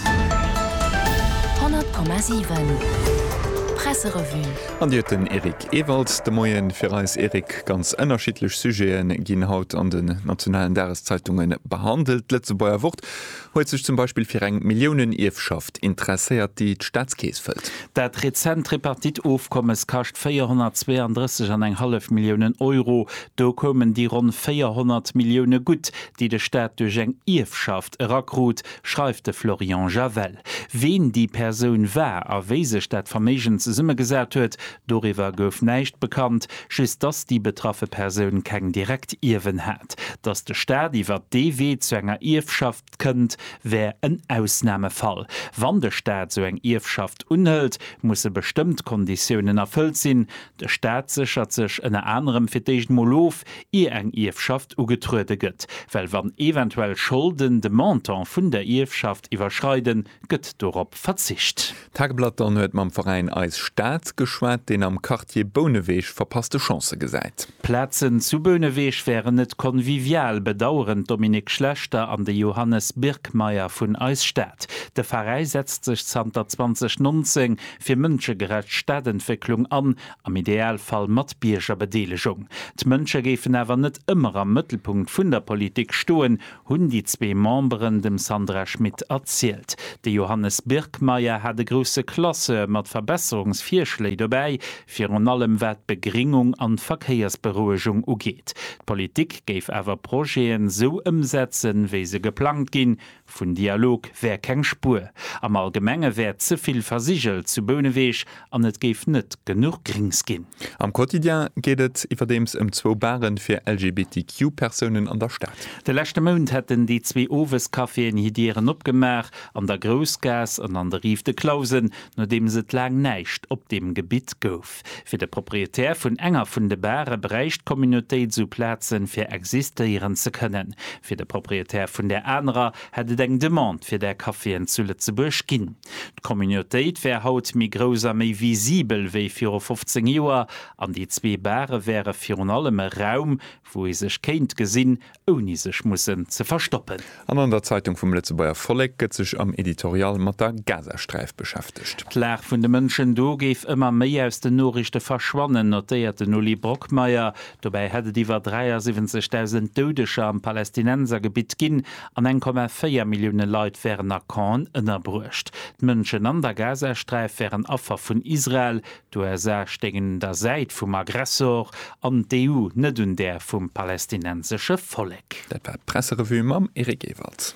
100,7 Presserevue. An Dir hutt den Eric Ewald de Moien fir eis. Eric, ganz ënnerschiddlech Sujete ginn haut an den nationalen Dageszeitunge behandelt. D'Lëtzebuerger Wort huet sech zum Beispill fir eng Milliounenierfschaft interesséiert, déi d'Staatskeess fëllt. Dat rezent Tripartite-Ofkommes kascht 432 an eng hallef Milliounen Euro. Do koumen déi ronn 400 Millioune gutt, déi de Staat duerch eng Ierfschaft, erakrut, schreift de Florian Javel. Ween déi Persoun war a wéi sech dat Verméigen zesummegesat huet, doriwwer gouf näischt bekannt, just dass déi betraffe Persoun keng direkt Ierwen hat. Dass de Staat iwwert dee Wee zu enger Ierfschaft kënnt, wär en Ausnamefall. Wann de Staat sou eng Ierfschaft unhëlt, musse bestëmmt Konditiounen erfëllt sinn, De Staat séchert sech ënner anerem fir d'éischt mol of, ier eng Ierfschaft ugetruede gëtt, well wann eventuell Scholden de Montant vun der Ierfschaft iwwerschreiden, gëtt dorop verzicht. D'Tageblatt dann huet mam Veräin Eis Stad geschwat, deen am Quartier Bouneweg verpasste Chancë gesäit. D'Plazen zu Bouneweg wären net convivial, bedaueren d'Dominique Schlechter an de Johannes Birkmeyer vun Eis Stad. De Veräi setzt sech zanter 2019 fir mënschegerecht Stadentwécklung an, am Idealfall, mat Biergerbedeelegung. D'Mënsche géifen awer net ëmmer am Mëttelpunkt vun der Politik stoen, hunn déi zwee Memberen dem Sandra Schmid erzielt. De Johannes Birkmeyer hat e grousse Classeur mat Verbesserungsvirschléi dobäi, virun allem wat d'Begringung an d'Verkéiersberouegung ugeet. D'Politik géif awer Projeten esou ëmsetzen, wéi se geplangt ginn, Vun Dialog wär keng Spuer. Am Allgemenge wär ze vill versigelt zu Bouneweg an et géif net genuch Grinks ginn. Am Quotidien geet et iwwerdeems ëm zwou Baren fir LGBTQ-Persounen an der Stad. De leschte Mount hätten déi zwee Owescaféen hir Dieren opgemaach, an der Groussgaass an an de Rive de Clausen, nodeems et laang näischt op deem Gebitt gouf. Fir de Proprietär vun enger vun de Bare bräicht d'Communautéit esou Plazen, fir existéieren ze kënnen. Fir de Proprietär vun där anerer hätt et eng Demande fir där Caféen zu Lëtzebuerg ginn. D'Communautéit wär haut méi grouss a méi visibel wéi viru 15 Joer an déi zwee Bare wäre virun allem e Raum, wou ee sech kéint gesinn ouni sech mussen ze verstoppen. An an der Zeitung vum Lëtzebuerger Vollek gëtt sech am Editorial mat der Gazasträif beschäftegt. D'Lag vun de Mënschen do géif ëmmer méi aus den Noriichte verschwannen, notéiert den Uli Brockmeyer. Dobäi hätt et iwwer 73.000 Doudeger am Palästinensergebitt ginn an 1,4 Millioune Leit wären a Campen ënnerbruecht. D'Mënschen an der Gazasträif wären Affer vun Israel, D'USA stéingen un der Säit vum Aggressor an d'EU net un där vum palestinensesche Vollek. Dat war d'Presserevue mam Eric Ewald.